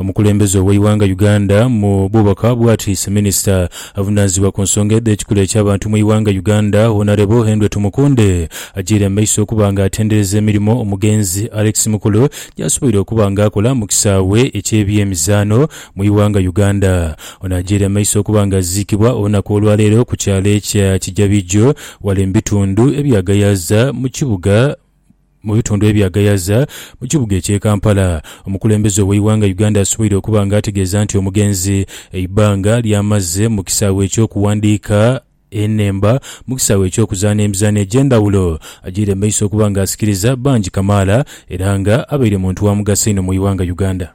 Omukulembeze ow'eighanga Uganda mu bubaka bwatiise minisita avunaanizibwa ku nsonga edh'ekikula eky'abantu mu ighanga Uganda Honarebo Henry Tumukunde agiire mu maiso okuba nga atendereza emirimo omugenzi Alex Mukulu gyasoboire okuba nga akola mu kisaawe eky'ebyemizaano mu ighanga Uganda. Ono agiire mu maiso okuba nga aziikibwa olunaku olwaleero ku kyalo ekya Kijabijo wale mu bitundu ebya Gayaza mu kibuga Mu bitundu ebya Gayaza mu kibuga eky'e Kampala, omukulembeze ow'eighanga Uganda asoboire okuba nga ategeeza nti omugenzi eibbanga ly'amaze mu kisaawe eky'okuwandiika enhemba mu kisaawe eky'okuzaana emizaano egy'endhawulo agyiire mu maiso okuba nga asikiriza bangi kamaala era nga abaire muntu wa mugaso einho mu ighanga Uganda.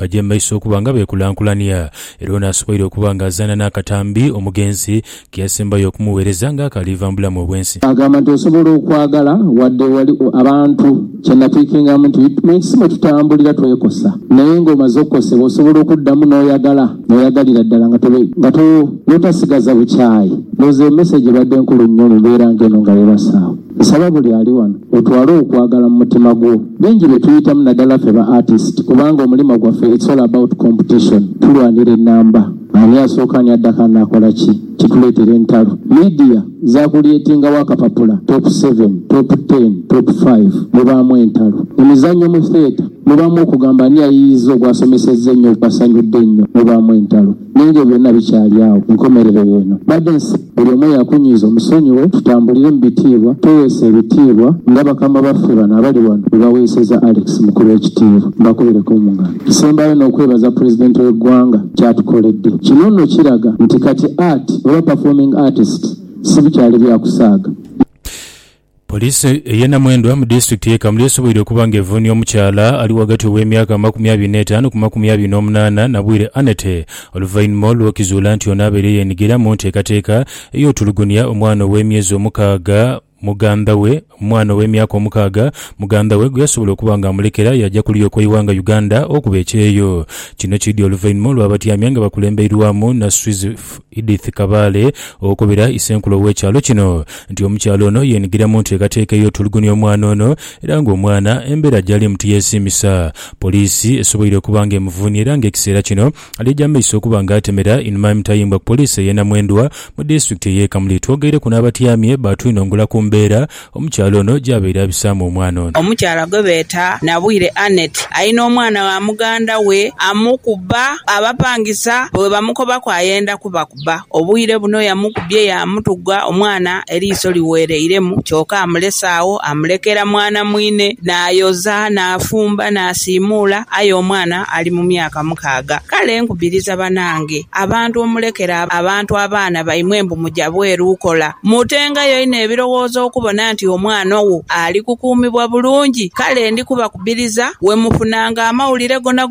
Baja mu maiso okuba nga beekulankulania, era ono asoboire okuba nga azaana n'akatambi omugenzi ke yasembayo okumugheereza nga akaaliva mu bulamu obw'ensi. Agamba nti, Osobola okwagala wadde wali abantu. Kye nnatwikingamu nti, Ensi mwe tutambulira twekosa, naye ng'omaze okukosebwa osobola okuddamu n'oyagala, n'oyagalira ddala nga to, nga to, n'otasigaza bukyayi. Ndowooza eyo mesegi ebadde nkulu nnyo mu mbeera ng'eno nga yeebasaawo. Nsaba buli ali wano otwale okwagala mu mutima gwo. Bingi bye tuyitamu nadala ffe ba artist kubanga omulimo gwaffe it's all about competition. Tulwanira enamba. Ani asooka ani addako ani akola ki. Kituleetera entalo. Media za kulyetingawo akapapula top seven, top ten, top five. Mubaamu entalo. Emizannyo mu theatre mubaamu okugamba ani ayiiyizza ogwasomesezza ennyo ogwasanyudde ennyo. Mubaamu entalo. Naye nga byonna bikyali agho, ku nkomerero y'eno badensi, buli omu eyakunyiiza omusonyiwe, tutambulire mu bitiibwa, tweweese ebitiibwa nga bakama baffe bano abali ghano bwe baweeseza Alex Mukulu ekitiibwa. Mbakubire ku ngalo. Nsembayo n'okwebaza Pulezidenti w'eggwanga ky'atukoledde. Kino nno kiraga nti kati art oba performing artists sibikyali bya kusaaga. Poliisi ey'e Namwendwa mu disitulikiti y'e Kamuli esoboire okuba nga evuunia omukyala ali ghagati ow'emyaka amakumi abiri n'etaanu ku makumi abiri n'omunaana, Nabwire Anete oluvainhuma olw'okizuula nti ono abaire yeenhigira mu nteekateeka ey'otulugunia omwana ow'emyezi omukaaga muganda we mwana ow'emyaka omukaaga muganda we gweyasobola okuba nga amulekera yaaja ku luyoka Iwanga Uganda okuba ekyeyo. Kino kiidhi oluvainhuma olw'abatyamya nga bakulembeirwamu Naswizi Edith Kabaale okubira Isenkulu ow'ekyalo kino nti omukyala ono yeenhigira mu nteekateeka ey'otulugunia omwana ono era ng'omwana embeera gy'alimu tiyeesiimisa poliisi esoboire okuba ng'emuvuunia era ng'ekiseera kino ali egy'amaiso okuba ng'atemera inhuma emitayimbwa ku poliisi ey'e Namwendwa mu disitulikiti ey'e Kamuli. Twogeireku n'abatyamye baatwinhongolaku mbeera Omukyala ono gy'abaire abisaamu omwana ono. Omukyala gwe beeta Nabwire Annet alina omwana wa muganda we amukuba abapangisa bwe bamukobaku ayenda kubakuba. Obwire buno yamukubye yaamutuga omwana eriiso liweereiremu kyoka amulese agho amulekera mwana mwine n'ayoza n'afumba n'asiimuula aye omwana ali mu myaka mukaaga. Kale nkubiriza banange abantu omulekere abantu abaana baimwe mbu. kuja bweru kukola. Mutenga yo inho ebirowoozo okubona nti omwana owo ali kukuumibwa bulungi. Kale ndi kubakubiriza bwe mufunanga amawulire gonagona